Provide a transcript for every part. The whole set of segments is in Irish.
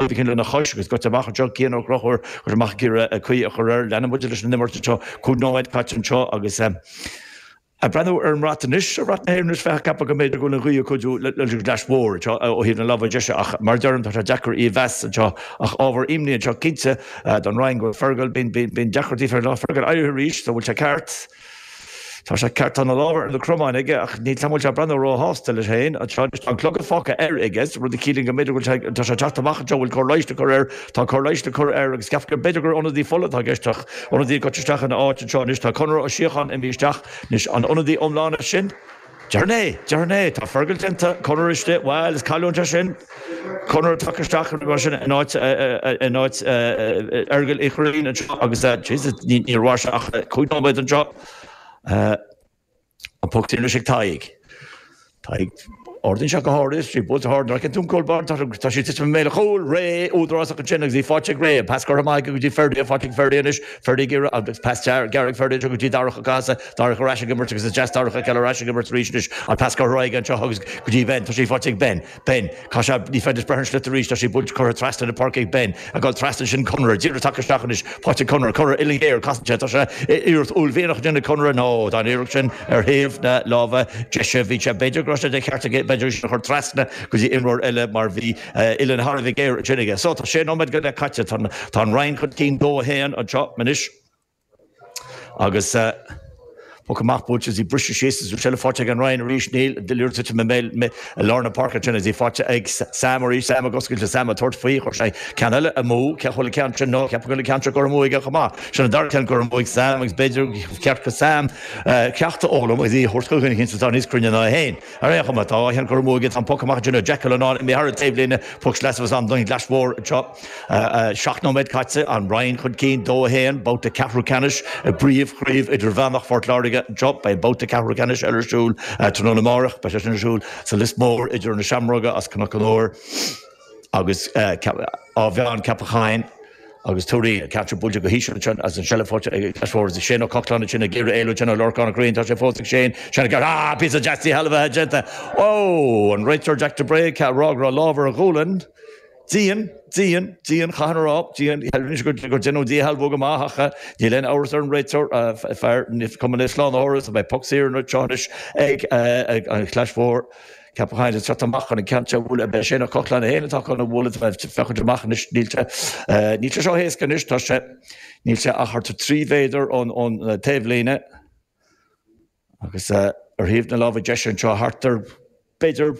Go deimhin, lena chois agus scoite amach anseo, Cian Ó Conchúir curtha amach ag iarraidh caoi a chur air, leanann muid leis an imirt anseo, cúig nóiméad caite anseo agus ag breathnú ar an mbrat anois, ar bhrat na hÉireann anois, bheifeá ag ceapadh go mb'fhéidir go bhfuil an ghaoth ag cuidiú leis an gClais Mhór anseo ó thaobh na láimhe deise ach, mar a deirim, tá sé deacair í a mheas anseo ach ábhar imní anseo cinnte don Rinn go bhfuil Fergal, bíonn deacrachtaí fé Fergal éirí arís, so an bhfuil sé ceart? Tá sé ceart, tá na lámha ar na cromáin aige, ach níl a fhios agam an bhfuil sé ag breathnú róshásta leis féin anseo. Anois, tá an clogad fágtha air, aige, rud a chiallaíonn go mb'fhéidir go bhfuil sé, tá sé ag teacht amach anseo, bhfuil cóir leighis le cur air, tá cóir leighis le cur air agus ceaptar, b'fhéidir gur ionadaí fola atá i gceist, ach ionadaí ag dul isteach ina áit anseo. Anois, tá Conor Ó Síocháin imithe isteach. Anois, an ionadaí iomlán é sin? Déarfainn é! Déarfainn é! Tá Fergal déanta! Conor istigh! Bhail, is cailliúint é sin. Conor ag teacht isteach, nó mar sin, in áit Fhergail Uí Chuirrín anseo agus, Jesus, níor mhair sé ach cúig nóiméad anseo. An poc sin anois ag Tadhg. Tadhg, ardaíonn sé go hard é, is í buailte go hard, an bhfeiceann tú an cúl báire? Tá sé ag titim i mbéal an chúil! Ray, údarásach ansin agus í faighte ag Ray. An pas curtha amach aige go dtí Ferdia, faighte ag Ferdia anois, Ferdia ag iarraidh, an pas gearr ag Ferdia anseo go dtí Darach Ó Cathasaigh Darach ar ais ag imirt agus is deas Darach a fheiceáil ar ais ag imirt arís anois. An pas curtha aige anseo agus go dtí Ben. Tá sé faighte ag Ben. Ben. Caith sé. Ní féidir breith ar an sliotar arís. Tá sé buailte curtha trasna na páirce ag Ben. Ag dul trasna ansin Conor. Díreach tagtha isteach anois. Faighte ag Conor. Conor, uillinn ghéar. Casann sé. Tá sé ag iarracht uaillmhianach á déanamh ag Conor. No. Tá an iarracht sin ar thaobh na láimhe deise. Bhí sé. B'fhéidir go raibh sé de cheart aige b'fhéidir é sin a chur trasna go dtí imreoir eile mar bhí uillinn thar a bheith géar ansin aige. So tá sé nóiméad go leith caite. Tá an Rinn chun cinn dó a haon anseo anois. Agus poc amach buailte is í briste síos is an tseilbh faighte ag an Rinn arís, níl, an sliotar ag titim i mBéal Ime i lár na páirce ansin is í faighte ag Sam arís, Sam ag oscailt is Sam ag tabhairt faoi, chuir sé ceann eile amú, cé a chuala ceann sin, no, ceapaim go raibh ceann seo curtha amú chomh maith, sin an dara ceann curtha amú ag Sam agus b'fhéidir gur cheart do Sam ceacht a fhoghlaim is í a thabhairt chun duine atá níos cruinne ná é féin. Ar aon chuma, tá an ceann curtha amú aige, an poc amach ansin, Declan Allen, imithe thar an taobhlíne, poc sleasa ansin don Chlais Mhór anseo. Seacht nóiméad caite, An Rinn chun cinn, 2-1, babhta ceathrú ceannais i bPríomh-Chraobh Idirmheánach Phort Láirge anseo. Beidh an babhta ceathrú ceannais eile ar siúl tráthnóna amárach, beidh sé sin ar siúl sa Lios Mór idir na Seamróga as Cnoc an Óir, agus Áth Mheáin, Ceapach Choinn agus Tuairín, cut buailte go híseal ansin agus an tseilbh faighte ag an gClais Mhór agus Shane Ó Cochláin ansin ag iarraidh éalú ansin ó Lorcán Ó Corraoin, tá sé fós ag Shane, Shane Ó Cearna, ah, píosa deas díshealbhaithe déanta, ó, an réiteoir Jack de Brae, ag rá go raibh lámh ar a ghualainn, dian, dian, dian, chaithfinn a rá, dian, rinne sé gur deineadh díshealbhú go maith ach níl aon amhras ar an réiteoir, fear, ní cuma le slánaitheoir is a bheith, poc saor anseo anois ag an gClais Mhór. Cé atá ag teacht amach chun an gceann seo a bhualadh, ab é sin, an Caolán féin atá chun é a bhualadh, tá féachaint amach anois, níl sé, níl sé seo éasca anois, tá sé, níl sé ach thart ar trí mhéadar ón, ón taobhlíne agus ar thaobh na láimhe deise anseo thart ar b'fhéidir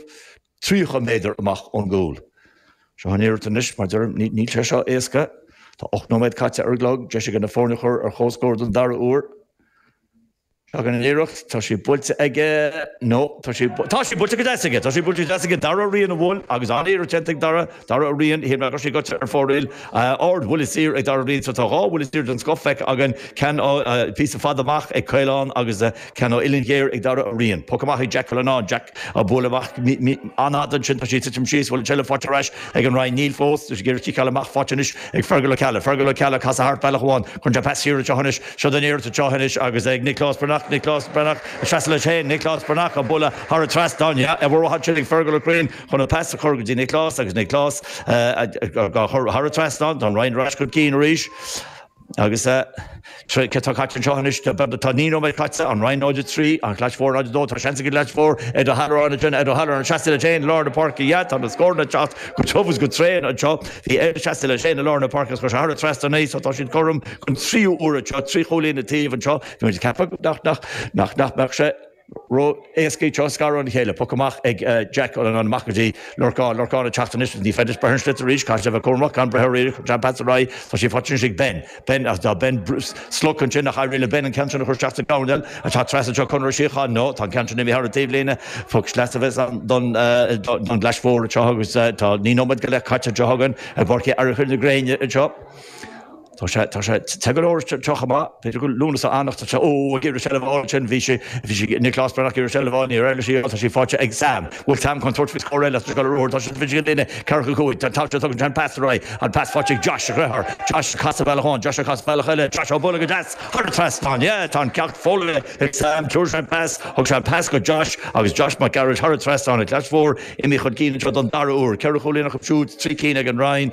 tríocha méadar amach ón gcúl. Seo an iarracht anois, mar deirim, níl, níl sé seo éasca. Tá ocht nóiméad caite ar an gclog, deis aige na foirne a chur ar comhscór den dara huair. Tagann an iarracht, tá sí buailte aige, no, tá sí, tá sí buailte go deas aige, tá sí buailte go deas aige, Dara Ó Riain a bhuail agus an-iarracht déanta ag Dara, Dara Ó Riain, shíl mé go raibh sí gaibhte ar fóraoil, ardbhuille saor ag Dara Ó Riain, so tá dhá bhuille saor den scoth feicthe againn, ceann ó phíosa fada amach ag Caolán agus ceann ó uillinn ghéar ag Dara Ó Riain. Poc amach ag Jack Cullinane, Jack dá bualadh amach, an-fhada ansin, tá sí ag titim síos, bhfuil an tseilbh faighte ar ais ag an Rinn, níl fós, tá sí ag iarraidh ciceáil amach, faighte anois ag Fergal Ó Ceallaigh, Fergal Ó Ceallaigh, casadh thart bealach amháin, tugann sé an pas siar anseo anois, Seo í an iarracht seo anois agus é ag Nioclás Breathnach, Nioclás Breathnach ag seasamh leis féin, Nioclás Breathnach ag bualadh thar an trasnán, yeah, an-mhaith ansin ag Fergal Ó Cuinn chun an pas a chur go dtí Nioclás agus Nioclás á chur thar an trasnán, tá an Rinn ar ais chun cinn arís agus eh, céard tá caite anseo anois, tá naoi nóiméad caite, an Rinn 0 3, an Chlais Mhór 0 2, tá seans ag an gClais Mhór ar do Halloran a sin ar do Halloran seasta leis féin i lár na páirce, yeah, tá na scóranna ag teacht go tiubh is go tréan anseo, bhí sé seasta leis féin i lár na páirce go thar an trasnán arís, tá siad chom don tríú huair anseo, trí chúilín an taobh anseo, bhí muid ag ceapadh nach mbeadh sé ró-éasca iad seo a scaradh óna chéile. Poc amach ag Jack amach go dtí Lorcán. Lorcán ag teacht anois, ní féidir breith ar an sliotar arís, caithfidh sé bheith cúramach gan breith air arís, chuir John Pats ar aghaidh, tá sí faighte anois ag Ben. Ben, ach tá Ben slogtha ansin, níor éirigh le Ben an ceann sin a chur isteach sa gcamán eile atá ag trasnú seo, Conaire Ó Síocháin, no, tá an ceann sin imithe thar an taobhlíne, poc sleasa a bheas ann don gClais Mhór anseo agus tá naoi nóiméad go leith caite anseo againn i bPáirc Uí Fhearchair anseo. Tá sé, tá sé, tá go leor anseo chomh maith, faoi na soilse anocht tá sé, ó ag iarraidh seilbh a fháil ansin, bhí sé, bhí sé, Nioclás Breathnach ag iarraidh seilbh a fháil, níor éirigh leis í a fháil, tá sí faighte ag Sam, bhfuil Sam chun tabhairt faoi scór eile as an scoil arothar, tá sé, bhí sé ag líne ceathracha cúig, tá, tá sé, tugann sé an pas ar aghaidh, an pas faighte ag Josh, a dheartháir, Josh ag casadh bealach amháin, Josh ag casadh bealach eile, Josh á bualadh go deas thar an trasnán, yeah, tá an ceacht foghlamtha ag Sam, thriail sé an pas, thug sé an pas go Josh agus Josh Mac Gearailt thar an trasnán, an Chlais Mhór imithe chun cinn anseo den dara huair, ceithre chúilín acu siúd, trí cinn ag an Rinn,